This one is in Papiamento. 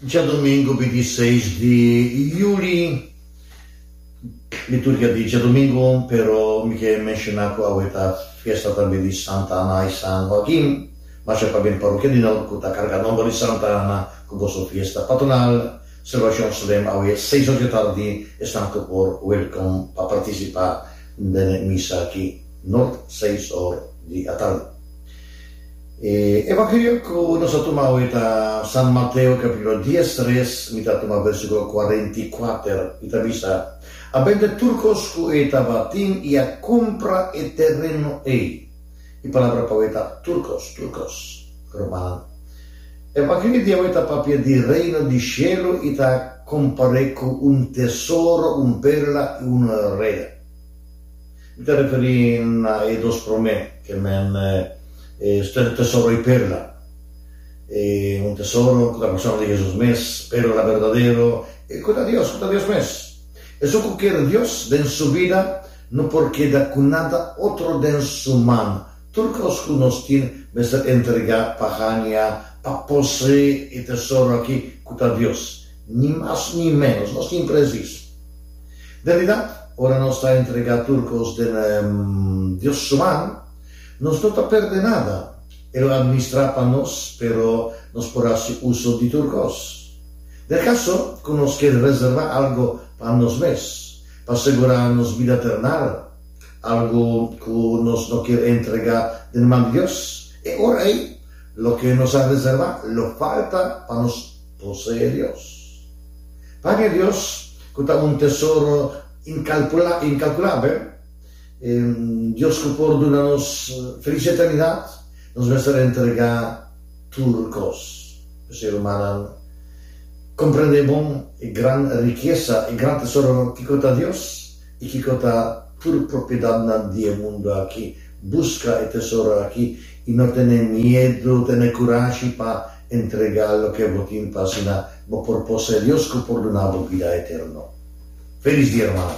Djadomingu di di seis di Yuli, liturgia di djadomingu, pero mi ke menshoná ku awe ta fiesta tambe di Santa Ana i San Hoakin. Masha pa bin parokia di nou ku ta karga nòmber di Santa Ana ku boso fiesta patronal. Selebrashon Srem awe seis ora di tardi, esnan ku por wèlkom pa partisipá den e misa aki, nort, seis or di atardi. E Evangelio ku nos a tuma hoy ta San Mateo kapítulo dies tres, mi ta tuma versíkulo kuarenta i kuater, i ta bisa, A bende tur kos ku e tabatin i a kumpra e tereno ei. E palabra pa hoy ta tur kos, tur kos. Rumannan, e Evangelio di awe ta papia di Reino di shelu i ta kompar'é ku un tesoro, un perla i un reda. Mi ta referí na e dos promé, ke men e Usted e tesoro i perla. E un tesoro ku ta persona di Hesus mes, perla berdadero i ku ta Dios, ku ta Dios mes. Esun ku kier Dios den su bida no por keda ku nada otro den su man. Tur kos ku nos tin mester entregá pa haña, pa poseé e tesoro aki ku ta Dios. Ni mas ni ménos. Nos tin presis. Realidad, ora nos ta entrega tur cos den Dios su man, nos no ta perde nada. E lo administra pa nos, pero nos por haci uso di tur cos. Den caso cu nos kier reserva algo pa nos mes, pa segura nos bida ternal, algo cu nos no kier entrega den man di Dios, e ora ei loke nos a reserva lo falta pa nos. Boso e Dios. Pan e Dios, ku ta un tesoro inkalkulabel, un Dios ku por duna nos felis eternidat, nos mester entregá tur kos. P'esei, rumannan, komprendé bon e gran rikesa, e gran tesoro kiko ta Dios i kiko ta tur propiedatnan di e mundu aki. Buska e tesoro aki i no tene miedu, tene kurashi pa. Entrega loke bo tin pa asina bo por pos serio cu por duna bo bida eterno. Felis dia, hermana!